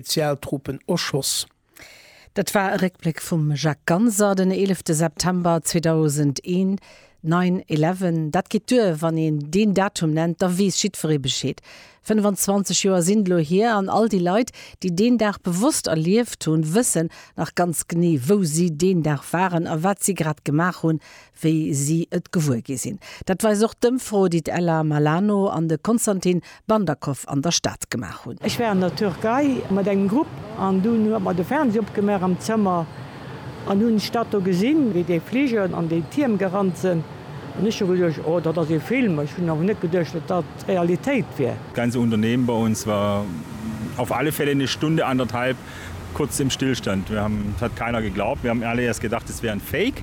Spezialtruppen erschoss. Dat war e Réckbléck vum Jacques Ganser den 11 September 2001, Nine Eleven, dat geet duer, wann een deen Datum nennt, da weess jiddweree Bescheed. 25 Joer sinn elo hier an all déi Leit, déi deen Dag bewosst erlieft hunn, wëssen nach ganz genee, wou si deen Dag waren a wat si grad gemaach hunn, wéi si et gewuer gi sinn. Dat weist och d'Ëmfro, déi d'Ella Malano an de Konstantin Bandakow an der Stad gemaach hunn. Ech war an der Türkei mat engem Grupp an dunn huet mer de Fernseh opgemaach am Zëmmer an hunn d'Stad do gesinn, wéi déi Fliger an déi Tierm gerannt sinn an ech hu geduecht, oh dat ass ee Film, ech hunn awer net geduecht, datt dat d'Realitéit wier. Das ganze Unternehmen bei uns war auf alle Fälle eine Stunde anderthalb kurz im Stillstand. Wir haben, es hat keiner geglaubt, wir haben alle erst gedacht, es wäre ein Fake.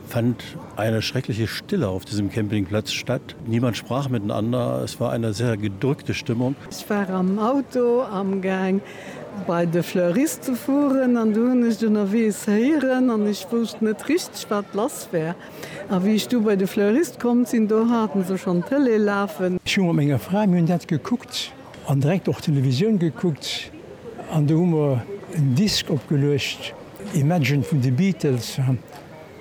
fand eine schreckliche Stille auf diesem Campingplatz statt. Niemand sprach miteinander. Es war eine sehr gedrückte Stimmung. Ech war am Auto amgaang bei de Fleurist ze fueren an du hunn ech ënnerweegs héieren an ech wousst net richteg wat lass war. A wéi ech du bei de Fleurist komm sinn, do haten se schonn d'Tëlee lafen. Ech hu mat menger Fra, mir hunn dat gekuckt an direkt och d'Televisioun gekuckt an do hu mer en Disk opgeluecht, Imagine vun de Beatles.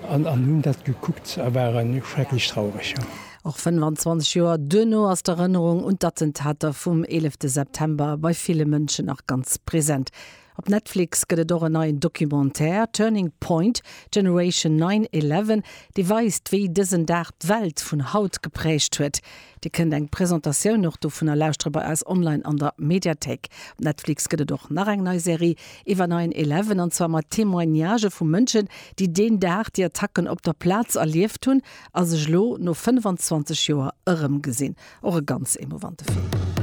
An hunn dat gekuckt a ware schrecklech traureg, jo. Och 25 Joer duerno ass d'Erënnerung un d'Attentater vum 11 September bei ville Mënschen nach ganz present. Op Netflix gëtt et och en neien Documentaire, Turning Point, Generation 9-11, dee weist, wéi dësen Dag d'Welt vun haut geprägt huet. Dir kënnt eng Presentatioun och dovunner lauschtere bei eis online an der Mediathéik. Op Netflix gëtt et och nach eng nei Serie, iwwer Nine Eleven, an zwar mat Témoignage vu Mënschen, déi deen Dag déi Attacken op der Plaz erlieft hunn a sech elo no 25 Joer erëmgesinn. Och e ganz emouvante Film.